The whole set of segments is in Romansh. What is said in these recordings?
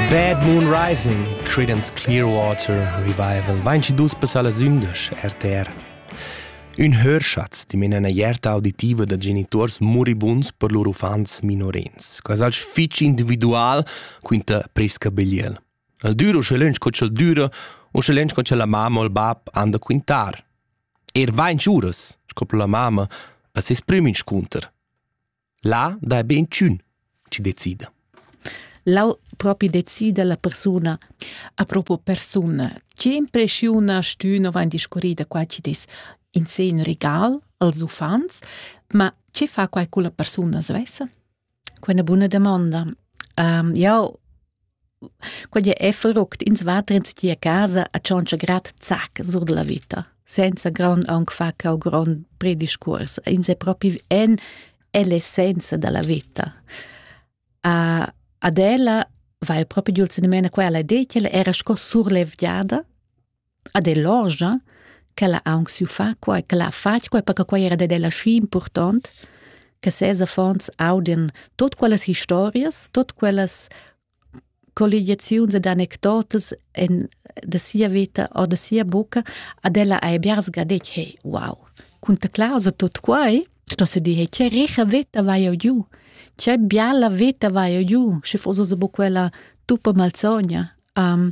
Bad Moon Rising, Creedence Clearwater Revival vainci dus passar las ündesch RTR. Ün hörschatz di mena ierta auditiva da genituors moribuns per lur uffants minorens. Quas alch fich individual quinta Prisca Begliel. Al düro sche lönch co ch'el düra o sche lönch co cha la mamma o il bab anda quintar. Er vainci uras, sco la mamma, a ses prüm inscunter. Là dai be inchün chi decida. Lau propi decida la persuna. A propo persuna, che impreschiuna stüna vain discurrida qua chi dis in se ün regal als uffants, ma che fa quai culla persuna svessa? Quella buna domanda. Um, jau Quei ei fruct, ins va dretg tier casa a tschontscha grad zac sur dalla vita, senza grond aunc far cau grond prediscuors. Ins è propi en ell'essenza dalla vita. A, ad ella vai propi giul segnamena quella idea ch'ella era sco surlevgiada ad el orgia, ch'ella ha aunc siu far quei, ch'ella ha fatg quei, perche quei era dad ella schi impurtont, che ses affons audien tot quellas historias, tot quellas colligiaziuns ed anecdotas en, da sia veta o da sia bucca, ad ella hai biars ga detg, hey, wow, cun ta clausa tot quei, sto se dir, hey, che richa veta vai eu giu, che biala veta vai eu giu, sche foss ossa bu quella tuppa malzogna. Um,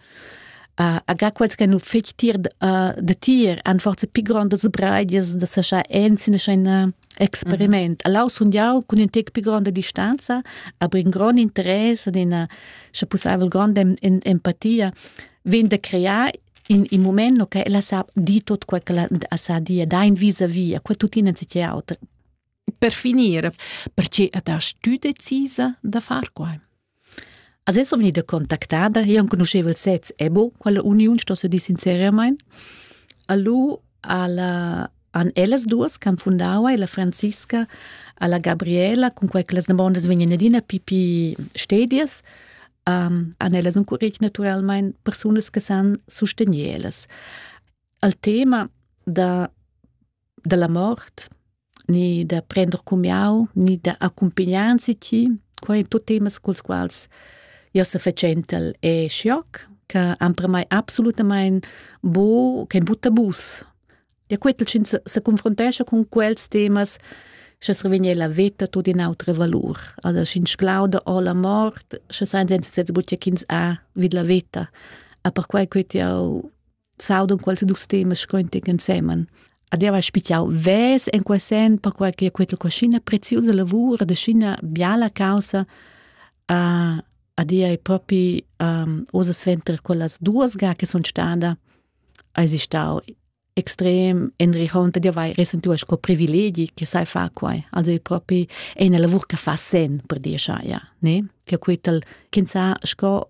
uh, aga quels che nu fetg tir uh, da tir han forza pi grondas breidias da sa scha ensin scha in uh, experiment. Mm -hmm. Allau sun jau cun in tec pi gronda distanza, aber in grond interesse ad ina scha pussaivel gronda empatia vegn da crear in, in moment no che ella sa di tot quel che la sa dia da in vis a via, quel tuttina si auter. per finir, perche at hast tü decisa da far quai? Als es venida contactada e han conosceva il sez Ebo, quella uniun sto se dir sincerament. Allo alla han ellas duas che han fundau la Franziska alla Gabriela, con quei che las nabondas vegnan adina pipi stedias, um, han ellas encuretg naturalmente persunas che san sostegner ellas. Al tema da dalla mort, ni da prender cumiau, ni da accumpignar enzatgi. Quei ein tut temas culs quals jeu sefatschentel e schioc, che han per mei absolutamain bu, kein bu tabus. Ja quetel sch'ins se, se confrontescha cun quels temas, sche survegn la veta tut in autra valur. Also sch'ins glauda o la mort, sche san senza sez buca ch'ins ha vid la veta. A perquai quet jau s'audon quels dus temas scointic ensemen. Ad eva spichiau ves en quel sen perquai che quella cuschina preziosa lavur da scina biala causa uh, ad ea è propi um, osa sventer quellas duas ga che son stada ai stau extrem enrichont di vai resentu sco privilegi che sai fa quai also è propi è una lavur che fa sen per dir ja ne che quittel kin sa sco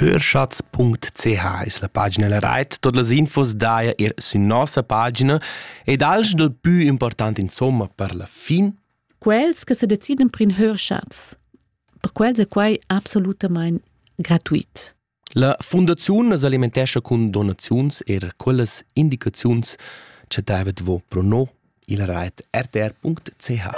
Hörschatz.ch es la pagina la rait. Tot las infos daja ir sün nossa pagina ed alch dal pü important insomma per la fin. Quels che se deciden per in Hörschatz, per quels è quai absolutamain gratuit. La Fundaziun as alimentescha cun donaziuns eir quellas indicaziuns cha davet vo pro no il rait rtr.ch.